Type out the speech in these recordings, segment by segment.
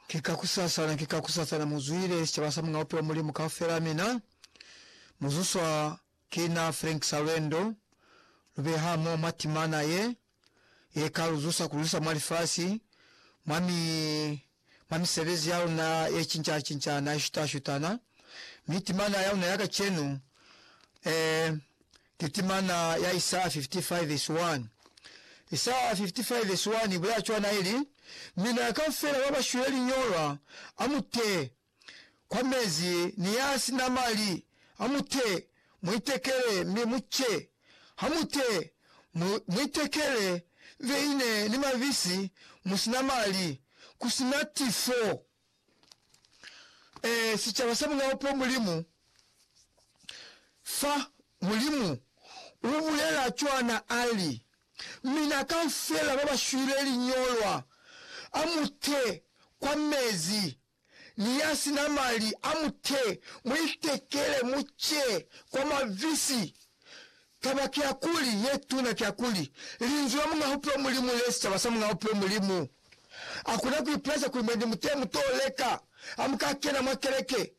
Ki ka kusasana, ki ka kusasana muzwile sicaba sa Muñaupe wa Mulimu kaufela. Mina muzuswa kina Frank Salwendo, lubeha mo mwa timana ye, ye ka luzusa kulusa mwa lifasi, mwa mi, mwa misebezi yaluna ye cinca cincana, ye shuta shutana, mi timana yaluna ya kacenu, eh, Ki timana ya Isaya 55 vesi 1. Isaya 55 vesi 1 ibulela cwana ili, Mina ya kaufela ba ba shwile liñolwa, a mu te kwa mezi, ni ya si na mali, a mu te mu itekele, mi mu ce. Ha mu te mu, mu itekele veine ni mabisi, mu si na mali, ku si na tifo. e, sicaba sa mulaho kwa Mulimu, fa Mulimu u bulela cwana, a li, Mina kaufela ba ba shwile liñolwa, a mu te kwa mezi, ni ya si na mali, a mu te, mu itekele, mu ce kwa mabisi, Taba kiakuli, ye tuna kiakuli, Linzwi la Muñ'a Bupilo Mulimu li esicaba sa Muñ'a Bupilo Mulimu. A kona ku ipulaisa kuli mwendi mutee mu t'o leka ha mu ka kena mwa keleke.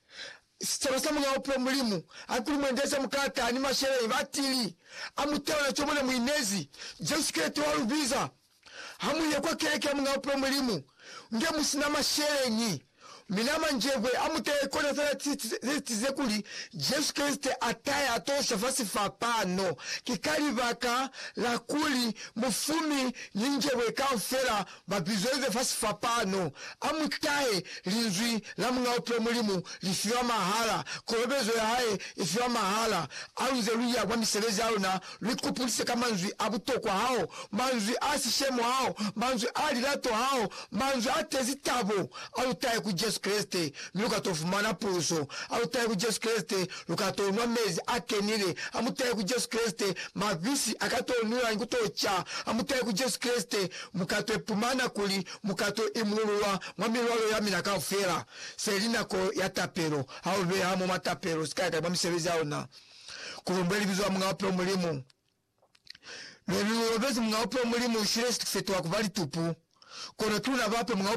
Sicaba sa Muñ'a Bupilo Mulimu ha kuli mwendi eze mu ka taha ni masheleñi batili a mutehona co mu ne mu inezi. Jesu Kreste wa lu biza Ha mu ye kwa keleke ya Muñ'a Bupilo Mulimu, nge mu si na masheleñi, mi na manjebwe a mu taye kona za lati ze zitize kuli Jesu Kreste a taye a to sha fa sifapano. Ki ka libaka la kuli mufumi ni njebwe kaufela ba bizweze fa sifapano. A mu tahe! Linzwi la Muñ'a Bupilo Mulimu li fiwa mahala. Kolobezo ya hae i fiwa mahala. Aluze lu ya kwa misebezi ya luna Lu ikupulise ka manzwi a butokwa ao, manzwi a sishemo ao, manzwi a lilato ao, manzwi a tezi tabo, A lu tahe ku Jesu Kreste, mi lu ka to fumana puluso. A lu tahe ku Jesu Kreste, lu ka to nwa mezi a kenile. A mu tahe ku Jesu Kreste, mabisi a ka to nwiwa ni ku to ca. A mu tahe ku Jesu Kreste, mu ka to ipumana kuli mu ka to imululwa mwa milwalo ya mina kaufela. Se li nako ya tapelo. Ha u beha mo mwa tapelo, si ka yakanya mwa misebezi ya ona. Kulumbwe libizo la Muñ'a Bupilo Mulimu. Lwenu lulobezi Muñ'a Bupilo Mulimu ushile sitifiketo wakuba litupu, kono kiluna bape Muñ'a Bupilo Mulimu.